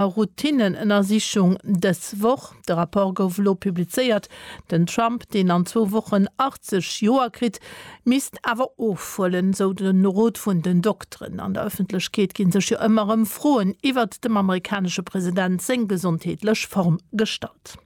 a Routinnenënnersichung dës Woch. De Rapport gouf elo publizéiert. Den Trump, deen an zwou Wochen 80 Joer kritt, misst awer ofhuelen, sou de Rot vun den Dokteren. An der Ëffentlechkeet gi sech jo ëmmer erëm Froen iwwert dem amerikanesche President seng gesondheetlech Form gestallt.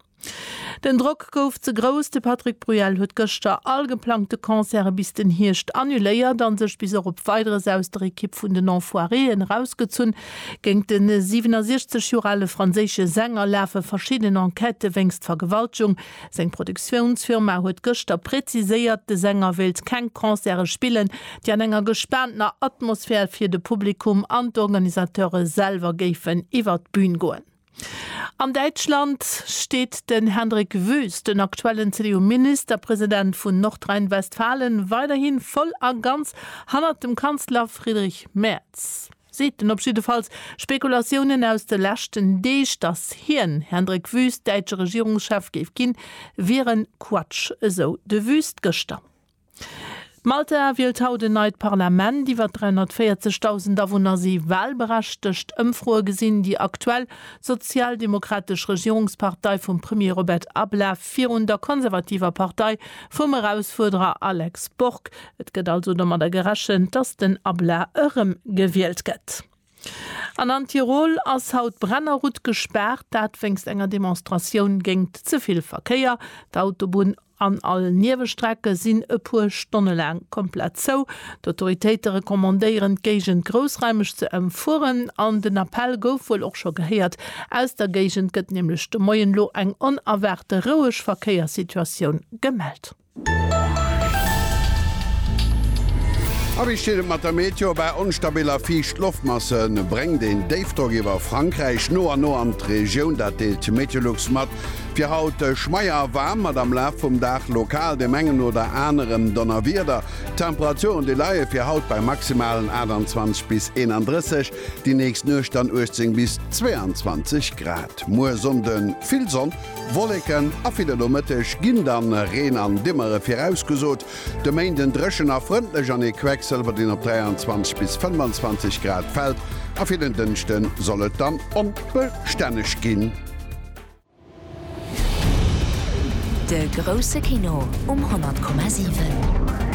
Den Drock gouf ze grouss, de Patrick Bruel huet gëschter all geplangte Concerte bis den Hierscht annuléiert a sech bis och op Weideres aus der Ekipp vun den Enfoiréen erausgezunn. Géint de 67 Joer ale franséische Sänger lafe verschidden Enquête wéinst Vergewaltgung. Seng Produktiounsfirma huet gëschter präziséiert, de Sänger wéilt keng Concerte spillen, déi an enger gespaantener Atmosphär fir de Publikum an d'Organisateure selwer géifen iwwer d'Bün goen. An Däitschland steet den Hendrik Wüst, den aktuellen CDU-Ministerpresident vun Nordrhein-Westfalen, weiderhi voll a ganz hannert dem Kanzler Friedrich Merz, seet en op jiddefalls. Spekulatiounen aus de leschten Deeg, datt hien, Hendrik Wüst, däitsche Regierungschef géif ginn, wieren Quatsch, esou de Wüst gëschter. Malta wielt haut en neit Parlament. Iwwer 340.000 Awunner si wahlberechtegt. Ëmfroe gesinn déi aktuell sozialdemokratesch Regierungspartei vum Premier Robert Ablav virun der konservativer Partei vum Erausfuerderer Alex Borg. Et gëtt also domadder gerechent, datt den Ablav erëmgewielt gëtt. An an Tirol ass haut d'Brennerroute gespaart, dat wéinst enger Demonstratioun géingt ze vill Verkéier. D'Autobunn an all Niewestrecke sinn e puer Stonne laang komplett zou. D'Autoritéite recommandéieren d'Géigend groussraimeg ze ëmfueren an den Appell gouf wuel och scho gehéiert. Aus der Géigend gëtt nämlech de Moien elo eng onerwaarte roueg Verkéierssituatioun gemellt. A wéi steet et mat der Meteo? Bei onstabil a fiicht Loftmasse bréngt een Déifdrock iwwer Frankräich no an no an d'Regioun. Dat deelt d'Meteolux mat. Fir haut schmeier a waarm, mat am Laf vum Dag lokal dem engen oder anerem Donnerwieder. D'Temperaturen déi leie fir haut bei maximalen 28 bis 31, déi nächst Nuecht dann 18 bis 22 Grad. Muer Sonnde vill Sonn. Wolleken a fir de Nomëtteg ginn dann Reen an Dimmere virausgesot. De Méinden dréchen a frëndlech an ee Quecksëlwer deen op 23 bis 25 Grad fält a fir den Dënschde soll et dann onbestänneg ginn. De grousse Kino um 100,7.